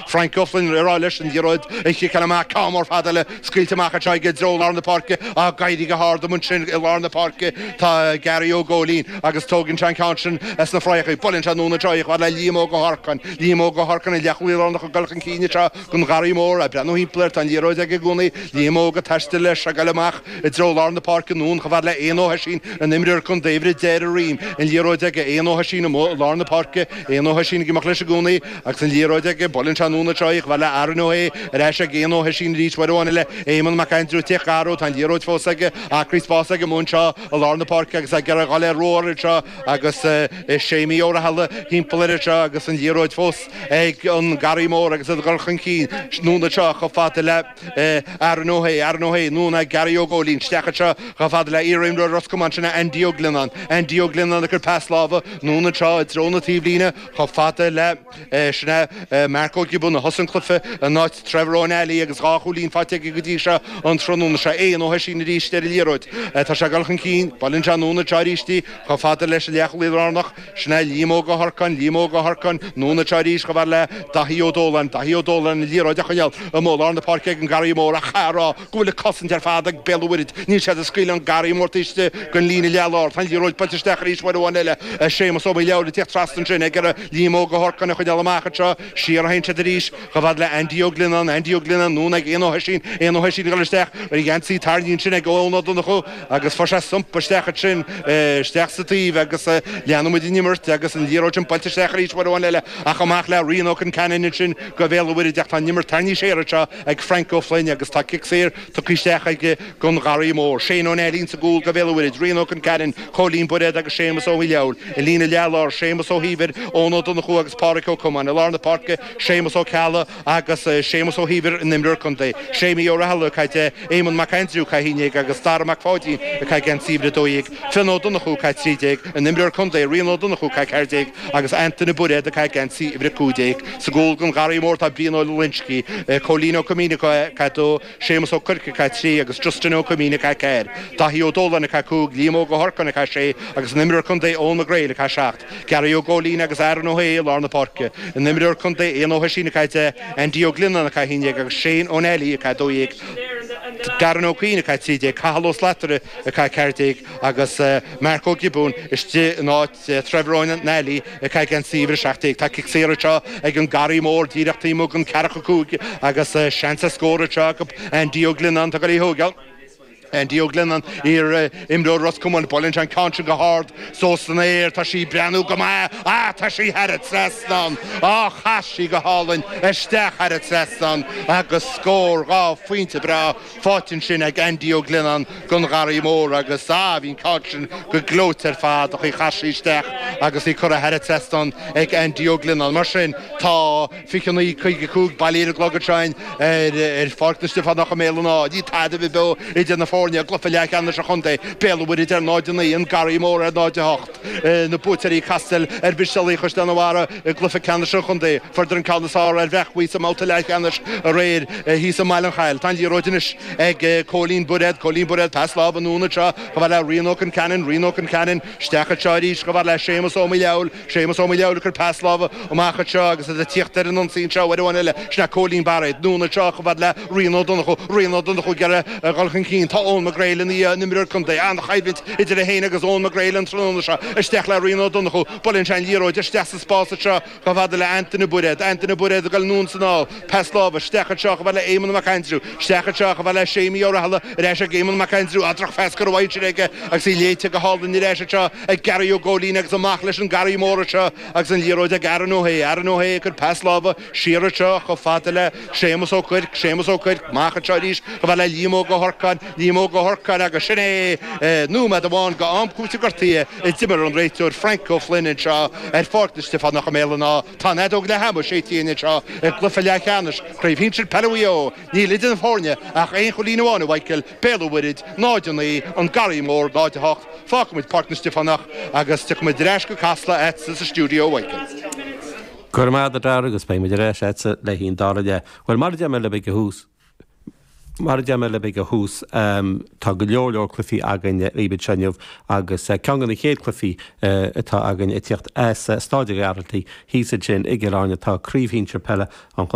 Frank O'Flynn ag rá leis an liathróid a chiceáil amach cic mór fada eile scaoilte amach anseo i dtreo lár na páirce ag éirí go hard amuigh ansin i lár na páirce tá Gary Ó Góilín agus tógann sé an ceann sin as na fraitheachaí. Buaileann sé anonn anseo í chomh fada le Liam Óg Ó hOrcáin. Liam Óg Ó hOrcáin an leathchúlaí lárnach ag dul chun cinn anseo gon Gharraí Mór ag breathnú thimpeall air tá an liathróid aige i gcónaí Liam Óg ag taisteal leis ag dul amach i dtreo lár na páirce anonn chomh fada le Éanna Ó hOisín an imreoir contae a bhris deireadh roim an liathróid ag Éanna Ó hOisín amuigh i lár na páirce Éanna Ó hOisín ag imeacht leis i gcónaí Agus an liathróid aige buaileann sé anonn anseo í chomh fada le Aaron Ó hAodha ar ais ag Éanna Ó hOisín arís uair amháin eile Éamonn Mac Aindriú ag teacht ina threo Tá an liathróid fós aige acraí spás aige amuigh anseo i lár na páirce agus ag iarraidh a dhul ar rómhar anseo agus Séimí Ó Rathaille thimpeall air anseo agus an liathróid fós ag an Garraí Mór agus iad ag dul chun cinn anonn anseo chomh fada le Aaron Ó hAodha Aaron Ó hAodha anonn ag Gearraí Ó Góilín isteach anseo chomh fada le iar-imreoir Ros Comáin sin Andy Ó Glionnáin Andy Ó Glionnáin ag cur pas láimhe anonn anseo i dtreo na taobhlíne Chomh fada le sin é Mark Ó Giobúin a thosaigh an cluiche in áit Trevor Ó Nally agus dhá chúilín faighte aige go dtí seo an tráthnóna seo. Éanna Ó hOisín arís ar an liathróid. Tá sé ag dul chun cinn. Buaileann sé anonn anseo arís í chomh fada leis an leathchúlaí lárnach. Sin é Liam Óg Ó hOrcáin. Liam Óg Ó hOrcáin. Anonn anseo arís chomh fada le Daithí Ó Dóláin. Daithí Ó Dóláin an liathróid á coinneáil amuigh i lár na páirce ag an Garraí Mór ach caithfear a rá go bhfuil an chosaint ar fad ag Béal an Mhuirthead. Níl siad ag scaoileadh an Garraí Mór taobh istigh den líne leath-lár. Tá an liathróid buailte isteach arís uair amháin eile ach Séamus Ó Maolfhábhail ag teacht trasna ansin ag iarraidh Liam Óg Ó hOrcáin a choinneáil amach anseo. Siar a théann siad arís chomh fada le Andy Ó Glionnáin. Andy Ó Glionnáin anonn ag Éanna Ó hOisín. Éanna Ó hOisín ag dul isteach ach a gheansaí tarraingthe ansin ag Eoin Ó Donnchú agus fuair sé stumpa isteach ansin isteach sa taobh agus leanann muid an imirt agus an liathróid sin buailte isteach arís uair amháin eile ach amach le Rian Ó Conceanainn ansin go Bhéal an Mhuirthead ach tá an imirt tarraingthe siar anseo ag Frank Ó Floinn agus tá cic saor tugtha isteach aige gon Gharraí Mór, Shane Ó Nally sa gcúl do Bhéal an Mhuirthead, Rian Ó Conceanainn, Cóilín Bairéad agus Séamus Ó Maolfhábhail i líne leath láir, Séamus Ó hÍomhair, Eoin Ó Donnchú agus Páraic Ó Comáin i lár na páirce, Séamus Ó Ceallaigh agus Séamus Ó hÍomhair an imreoir contae, Séimí Ó Rathaille ag caitheamh 10, Éamonn Mac Aindriú ag caitheamh 11, agus Dara Mac Pháidín ag caitheamh geansaí uimhir 12, Fionn Ó Donnchú ag caitheamh 13, an imreoir contae, Rian Ó Donnchú ag caitheamh 14, agus Antaine Bairéad ag caitheamh geansaí uimhir a cúig déag. Sa gcúl gon Gharraí Mór tá Brian Ó Loinsgí, Cóilín Ó Coimín ag caitheamh dó, Séamus Ó Cuirc ag caitheamh trí, agus Justin Ó Coimín ag caitheamh ceathair. Daithí Ó Dóláin ag caitheamh cúig, Liam Óg Ó hOrcáin ag caitheamh sé, agus an imreoir contae Eoghan Mac Gréil ag caitheamh seacht. Gearraí Ó Góilín agus Aaron Ó hAodha i lár na páirce. An imreoir contae Éanna Ó hOisín ag caitheamh deich, Andy Ó Glionnáin ag caitheamh a haon déag agus Shane Ó Nally ag caitheamh dó dhéag. Darren Ó Cuinn ag caitheamh trí déag, Cathal Ó Slatara ag caitheamh ceathair déag agus Mark Ó Giobúin istigh in áit. Sea, Trevor Nally ag caitheamh geansaí uimhir a 17. Tá cic saor anseo ag an Garraí Mór díreach taobh amuigh den ceathracha cúig agus seans ar scór anseo acu. Andy Ó Glionnáin atá ag goil í a thóigeáil. Andy Ó Glionnáin, iar imreoir Ros Comáin. Buaileann sé an ceann sin go hard suas san aer. Tá sí ag breathnú go maith. Ah tá sí thar an trasnán. Oh chas sí go hálainn isteach thar an trasnán agus scór. Dhá phointe breá. faighte ansin ag Aindí Ó Glionnáin gon Gharraí Mór agus, ah, bhí an ceann sin go gleoite ar fad an chaoi ar chas sí isteach agus í curtha thar an trasnán ag Aindí Ó Glionnáin. Mar sin, tá 29:55 bailithe ar an gclog ansin ar Pháirc na Stiofánach i mBéal an Átha. Níl tada beo idir na foirne i gcluiche leath cheannais an chontae, Béal an Mhuirthead ar 0:09, an Garraí Mór ar 0:08. na buaiteoirí ag castáil ar Mhistéalaigh Chaisleán an Bharraigh i gcluiche ceannais an chontae. Fuaireadar an ceann is fearr ar Bhréachmhaí sa mbabhta leathcheannais aréir thíos i mBaile Chathail. Tá an liathróid anois ag Cóilín Bairéad. Cóilín Bairéad, pas láimhe anonn anseo chomh fada le Rian Ó Conceanainn. Rian Ó Conceanainn, isteach anseo arís, chomh fada le Séamus Ó Maolfhábhail. Séamus Ó Maolfhábhail ag cur pas láimhe. Amach anseo agus iad ag tíocht ar an ionsaí anseo, uair amháin eile, sin é Cóilín Bairéad, anonn anseo chomh fada le Rian Ó Donnchú, Rian Ó Donnchú ag iarraidh a dhul chun cinn. Tá Eoin McGreal ina dhiaidh, an imreoir contae, an-choimhlint idir é féin agus Eoin McGreal an tráthnóna seo. Isteach le Rian Ó Donnchú, buaileann sé an liathróid isteach sa spás anseo chomh fada le Antaine Bairéad, Antaine Bairéad ag goil anonn is anall, pas láimhe, isteach anseo chomh fada le Éamonn Mac Aindriú, isteach anseo chomh fada le Séimí Ó Rathaille, ar ais ag Éamonn Mac Aindriú, á drochphas curtha ansin aige agus í léite go hálainn, ar ais anseo ag Gary Ó Góilín agus amach leis an Garraí Mór anseo, Agus an liathróid ag Aaron Ó Shé, Aaron Ó Shé ag cur pas láimhe siar anseo chomh fada le Séamus Ó Cuirc, Séamus Ó Cuirc amach anseo arís chomh fada le Liam Óg Ó hOrcáin, Liam Óg Ó hOrcáin agus sin é! Nóiméad amháin go am cúitimh gortaithe a d'imir an réiteoir Frank Ó Floinn anseo ar Pháirc na Stiofánach i mBéal an Átha. Tá an fheadóg leath ama séidte againn anseo i gcluiche leath cheannais Chraobh Shinsear Peile Mhaigh Eo. Níl idir na foirne ach aon chúilín amháin a Mhichael, Béal an Mhuirthead, 0 9, An Garraí Mór, 0 8, Fágfaimid Páirc na Stiofánach agus tiocfaimid ar ais go Casla a'tsa sa stiúideo uaigneach. Go raibh maith a'd a Dara agus beidh muid ar ais a'tsa le haghaidh an dara leath. Bhuel, mar a deir mé libh ó thús, mar a deir mé libh ó thús, tá go leor leor cluifí againn dhaoibh anseo inniu agus ceann go na chéad cluifí atá againn ag tíocht as Staid a' Ghearaltaigh thíos ansin i gCill Airne tá Craobh Shínsear Peile an